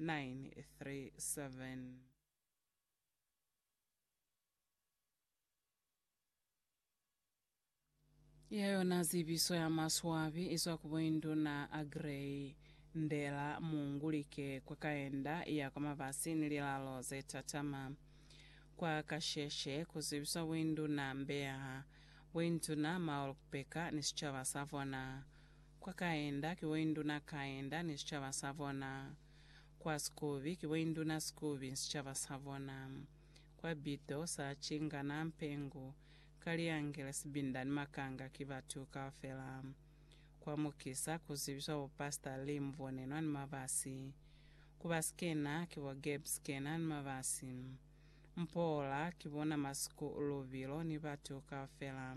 937. Ya yona zibiso ya maswabi izwa ku boinduna a Grey, Ndela, Mungu, Like, kwa Kaenda ya kwa Mabasi ni lilalo ze tatama. Kwa kasheshe, ku zibiswa boinduna Mbeya, boinduna Maulkbeker ni sicaba sa bona. Kwa Kaenda, ki bo induna Kaenda ni sicaba sa bona. Kwa Sikubi, ki bo induna Sikubi ni sicaba sa bona. Kwa Bido, sa cingana, mpengu, kaliangele, sibinda ni makanga ki batu kaufela. Kwa Mukisa, ku zibiswa bo Pastor Lee Muvonenwa ni Mabasi. Ku ba Skena, ki bo Gabe Skena ni Mabasi. Mpoola, ki bona Masuku Lubilo ni batu kaufela.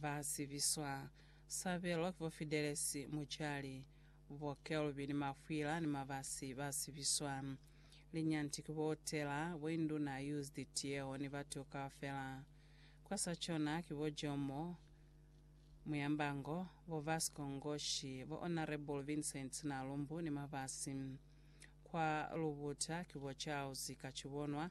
Ba zibiswa, Sabelo ki bo Fidelesi Mujali, bo Kelvin Mafwila ni Mabasi ba zibiswa. Linyanti ki bo Tela, bo Induna Used Tieo ni batu kaufela. Kwa sa cona ki bo Jomo Muyambango, bo Vasco Ngoshi, bo Honourable Vincent Nalumbu ni Mabasi. Kwa lubuta ki bo Charles Kachibonwa,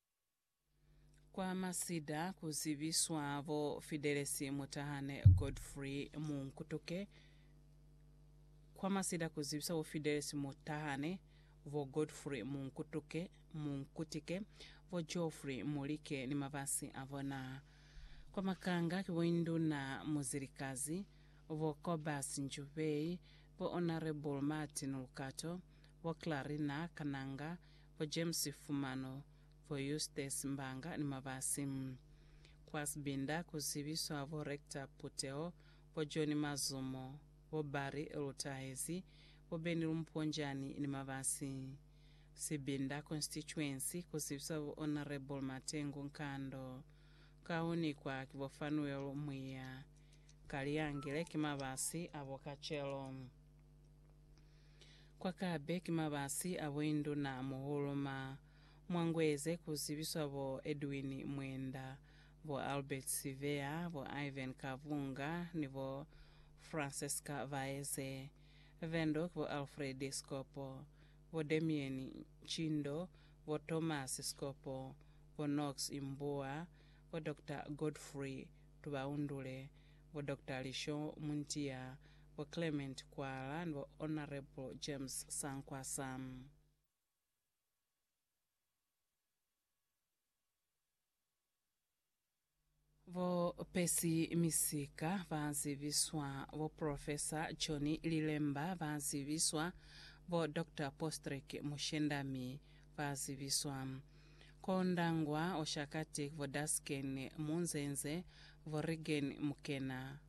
Kwa masida ku zibiswa bo Fidelesi Mutahane Godfrey Munkutuke Kwa masida ku zibiswa bo Fidelesi Mutahane, bo Godfrey Munkutuke, Munkutike, bo Geoffrey Mulike ni mabasi a bona. Kwa makanga ki bo Induna Muzilikazi, bo Cobus Njubei, bo Honourable Martin Lukato, bo Clarina Kananga, bo James Fumano, bo Eustace Mbanga ni Mabasi. Kwa Sibinda ku zibiswa bo Rector Puteho, bo John Mazumo, bo Barry Lutahezi, bo Benny Lumponjani ni Mabasi. Sibinda Constituency ku zibiswa bo Honourable Matengu Nkando. Ka u nikwa ki bo Fanuel Mwiya. Ka liyangile ki Mabasi a bo kacelo. Kwa Kabe ki mabasi a boinduna muhulu ma Mwangweze ku zibiswa bo Edwin Mwenda, bo Albert Siveya, bo Ivan Kavunga ni bo Francesca Vaeze. Vendo ki bo Alfred Sikopo, bo Damian Ncindo, bo Thomas Sikopo, bo Nox Imbuwa, bo Doctor Godfrey Tubaundule, bo Doctor Lisho Muntiya, bo Clement Kwala ni bo Honourable James Sankwasa. Bo Percy Misika ba zibiswa, bo Professor John Lilemba ba zibiswa, bo Doctor Postrek Mushendami ba zibiswa. Ko Ndangwa, Oshakati, ku bo Dasken Munzenze, bo Reagan Mukena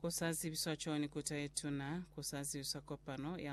Ku sa zibiswa cwani Kuta ye Tuna? Ku sa zibiswa kopano ya